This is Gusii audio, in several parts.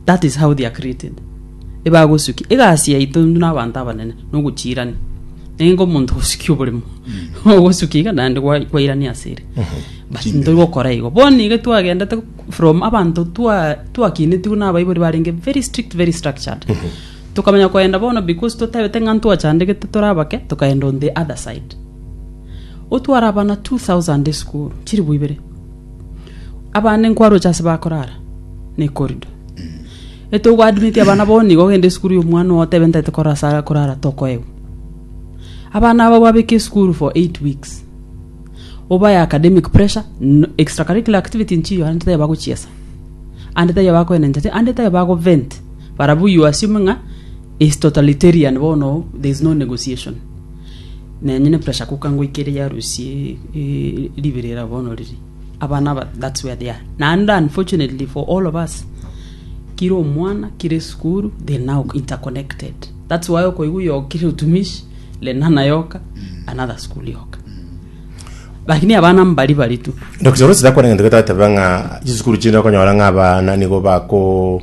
That is how they are created. Ebagosukia egasi yaito intwe na abanto abanene nogochirania. Nenge omonto gosukia oboremo. Ogosukia iga naende gwa- gwairania ase ere. But Chimbe. ntori gokora igo. Bono iga twagendete from abanto twa twakinetigwe na abaibori barenge very strict very structured. Tokamanya koenda bono because totabete ng'a ntwachandegete tore abake tokaenda on the other side. Otwara abana 2000 esukuru chiribu ibere. Abana nkwaroche ase bakorara na ecorridor. Ete ogo admiti abana bono nigo ogende esukuru ya omwana oo otebe ntaete korora ase are korara tokoegwa. Abana aba babeke esukuru for eight weeks. Obae academic pressure, no extra curricular activity nchiyo aye taiyo bagochiesa. Ande taiyo bakoenencha te ande taiyo bago vent. Barabwo you assume ng'a is totalitarian bono there is no negotiation. Nenyene pressure cooker ngoikere yarusie ribirira bono riri. Abana aba that's where they are. Naende unfortunately for all of us kira omwana kira esukuru they now interconnected. That's why okoigwa oyo kira otumishi lenana yoka another school yoka. Lakini abana mbari bari tu. Dr. Rose dakwana ngento getateba ng'a chisukuru chinde okonyora ng'a abana nigo bako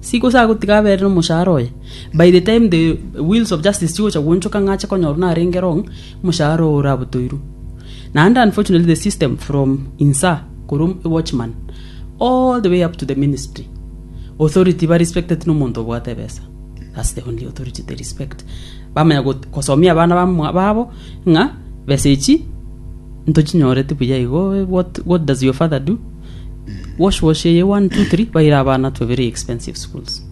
Si gose agotiga abeere nomoshahara oye, by the time the wheels of justice chigocha gwoonchoka ng'a ache konyorwa narenge wrong, omoshahara oo orabotoirwe. Naende unfortunately the system from insa korwa a watchman all the way up to the ministry, authority ba respected nomonto obwate ebesa. That's the only authority they respect. Bamanya got- gosomia abana ba mwa- babo ng'a besa echi ntochinyorete buya igo, what, what does your father do? wash wash eye one two three baire abana to very expensive schools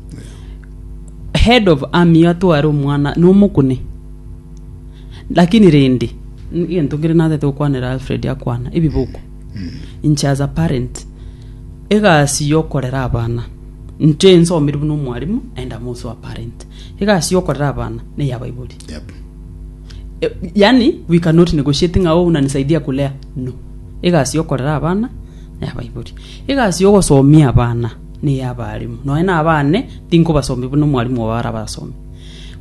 head of army atware omwana nomokune lakini rende n- egento nkere natete gokwanera alfred akwana ebiboko inche as a parent egasi yokorera abana inche nsomire buna omwarimu and I'm also a parent egasi yokorera abana neyabaibori Yep. Eh, yani we cannot negotiate ng'a oh unanisaidia kulea no egasi yokorera abana nayabaibori egasi yogosomia abana neye abarimu noe na abane tinkobasomi buna omwarimu obo arabasomi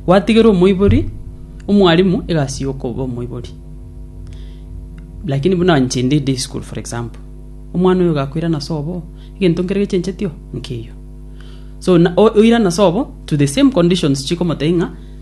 gwatigera omoibori omwarimu egasi yokoba omoibori lakini buna inche inde day school for example omwana oyo gakoirana sobo egento nkere gechencheti oo nkeiyo so na- o- oirana sobo to the same conditions chikomotebia ng'a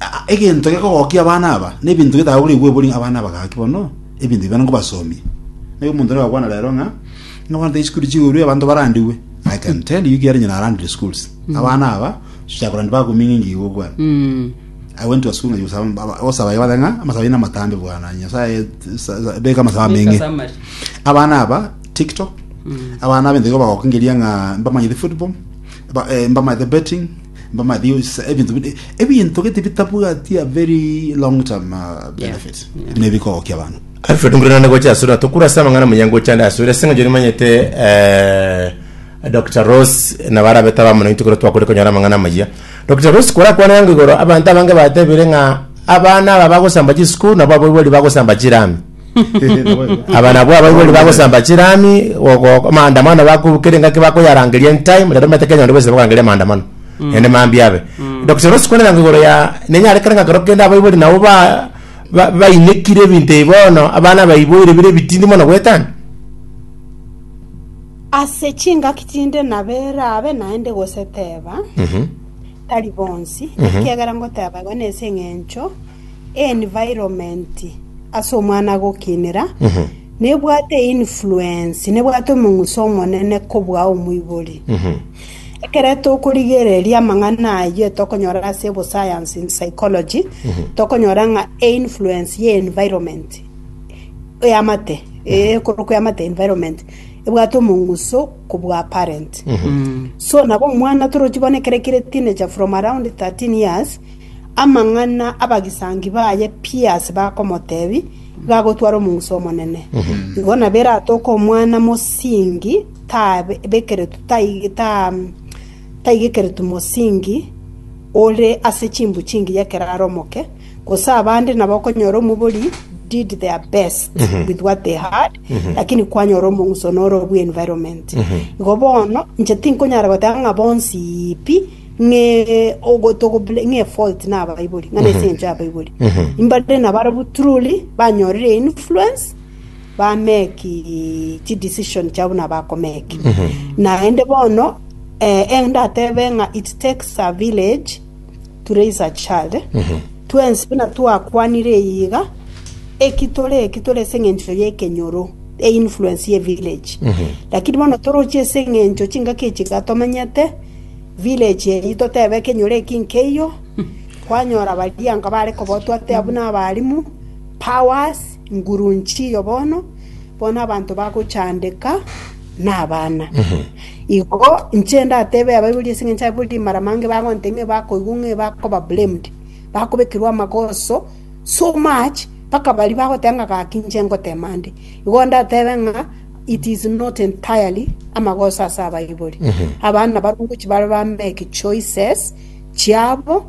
A- a- egento gekogokia abana aba nebinto bitagokire igwebori abana aba gaki bono ebinto ebi bana nkobasomia naye omonto nero agakwana rero ng'a ng'abante isukuru chigurwe abanto barandigwe i can tell you kiarenge narandire schools abana aba chiakorandi bakoming'ingi igo okwana Mm. I went to a school ngayusa osaba yabata ng'a amasaba ina matambe bwana nyasaye sa- sa- beka amasaba menge Beka samari. abana aba tiktok abana abinto igo bagokingeria ng'a mbamanyete football ba- eh, mbamanyete betting Mbamadius, ebinto bide ebinto gete bitabwati a very long term uh, benefit Yeah. bine bikogokia abantu Alfred Nguru nane gocha asura tokura asa amang'ana muyango ochande asura ase ng'encho nimanyete eh, Dr. Rose na barabe taba mono intukoro twakore konyora amang'ana amaya Dr. Rose kora kwana yango igoro abanto abange batebire ng'a abana aba bagosamba chisukuru nabo aboibori bagosamba chirami Aba nabwo abaibori bagosamba chirami, gogoka maandamano baku kera engaki bakoyarangeria in time, rero omanyete Kenya onde bwese bakorangeria maandamano. Ende mambia abe. Dr. Rose kwanera ng'a igoro ya nenyare kera ng'akero kende abaibori nabo ba ba- bainekire ebinto ebi bono abana baiboire bire ebitindi mono goetania. Ase chingaki chinde nabere abe naende gose teba, tari bonsi, ekiagera ngoteba igo nase eng'encho Environment ase omwana gokinera nebwate influence nebwate omong'uso omonene kobua omoibori. Ekero tokorigereria amang'ana ayio tokonyora ase bo science in psychology tokonyora ng'a influence ye environment eamate ekorokwa eamate environment ebwate omong'uso kobua parent. So nabo omwana torochi bono ekero ekire teenager from around 13 years Amang'ana abagisangi baye Piasi bakomotebia gagotwara omongusu omonene. Igo nabo eratoke omwana mosingi tabekeretwe tai- ta- taigekeretwe mosingi ore ase chimbu chingi y'ekeraro omoke, gose abande nabo okonyora omobori did their best with what they had, lakini kwanyora omongusu noro obwe environment. Igo bono inche tinkonyara goteba ng'a bonsi pi, ng'e ogotogo bl- ng'e fault na abaibori ng'ana ase encho y'abaibori imbare na barabwo truly banyorire influence bameki chi decision chiabo na bakomeki naende bono eh, endatebe ng'a it takes a village to raise a child twensi buna twakwanire iga eki tore eki tore ase eng'encho y'ekenyoro e influence ye village lakini bono toroche ase eng'encho chingaki echi gatomenyete village eyio totebe ekenyoro eki nkeiyo, kwanyora baria nka bare kobotwa ate abwo n'abalimu, powers, ngurunchi iyo bono, bono abanto bagochandeka nabana. Igo inche ndatebe Abaibori ase eng'encho Abaibori mara mange bagonte ng'a bakoigwa ng'a bakoba blamed, bakobekerwa amagoso so much mpaka baria bagoteba ng'a gaki inche ngotema nde. Igo ndatebe ng'a. It is not entirely amagoso ase abaibori. Abana barabwo ngochia bare ba make choices chiabo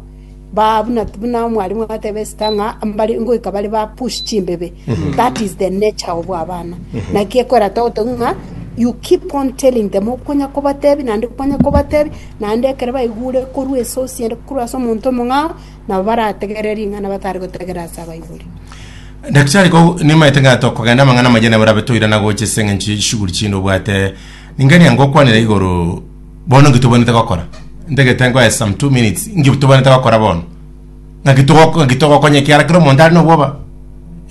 ba buna buna omwalimu agateba esita ng'a mbare ngoika bare ba push chimbebe. That is the nature of abana. Naki ekora togotogia ng'a you keep on telling them okonya kobatebi naende okonya kobatebi naende ekero baigure korwa esosi ende korwa ase omonto omong'ao nabo barategerere ring'ana batari gotegerera ase abaibori. Daktari ko nimaete ng'a tokogenda amang'ana amaya nabo rabe toire na gocha ase eng'encho ye chishughuli chinde obwate ningani ango okwanera igoro bono nki tobwanete gokora ntagete nkoe some two minutes nki tobwanete gokora bono ng'aki togoko- ng'aki togokonya ekiara kero omonto are na obwoba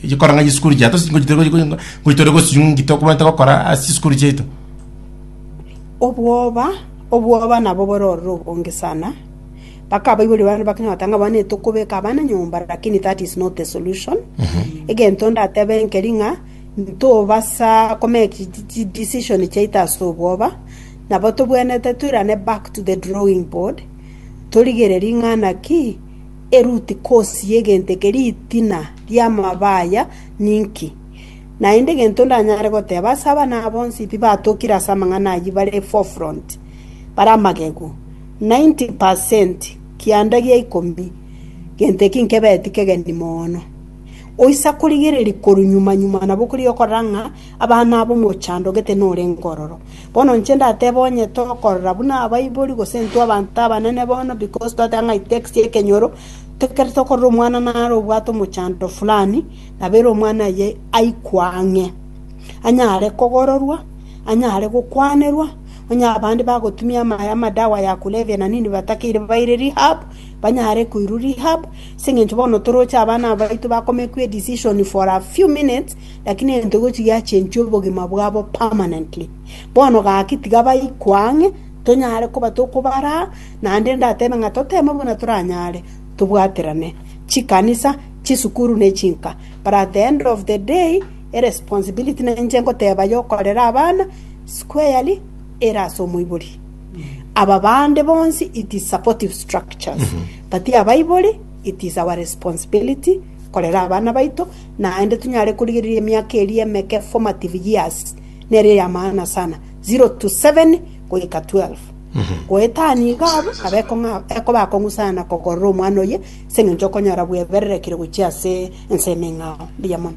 echi kora ng'a chisukuru chia tosi ngochi tore gochi- ngochi tore gosinywa nki tokobwanete gokora ase chisukuru chiaito obwoba obwoba nabo bororo onge sana Bakabaiboria barabwo bakang'ata ng'a abana tokobeka abana nyomba lakini that is not the solution. Egento ndatebe nkeri ng'a ntobasa komeki decision chiaito ase obwoba nabo tobwenete toirane back to the drawing board torigererie ng'a naki eruti cause yegento eke ritina riamaba aya ninki. Naende egento ndanyare goteba ase abana aba bonsi pi batokire ase amang'ana ayio bare forefront bare amagegu. 90 per cent kianda gia ikomi, gento eki nkebeti kegeni mono. Oisa korigereria korwa nyuma nyuma nabo korigia okorora ng'a abana abo mochandogete norenge ororo. Bono inche ndatebe onye tokorora buna abaibori gose intwe abanto abanene bono because twateba ng'a it takes ekenyoro, ekero tokorora omwana nare obwate omochando fulani, nabo ere omwana oye aikwe ang'e. Anyare kogororwa, anyare gokwanerwa. Onye abande bagotumia amaye amadawa ya kulevya na nini batakeire baire rehab, banyare koirwa rehab, ase eng'encho bono toroche abana abaito ba comake a decision for a few minutes, lakini egento gochi giachenchwe obogima bwabo permanently. Bono gaki tiga baikwe ang'e, tonyare koba tokobaraa, naende ndatebe ng'a toteme buna toranyare, tobwaterane chikanisa, chisukuru ne chinka. But at the end of the day, Eresponsibility ninche ngoteba yokorera abana squarely ere ase omoibori. Aba bande bonsi it is supportive structures but abaibori it is our responsibility korera abana baito naende tonyare korigereria emiaka eria emeke formative years nere ya maana sana 0 to 7 goika 12 goetania iga abwo nabo ekong'a- ekoba akong'usana kogorora omwana oye ase eng'encho okonyora bwebererekire gochia ase ense ime eng'ao. Mbuya mono.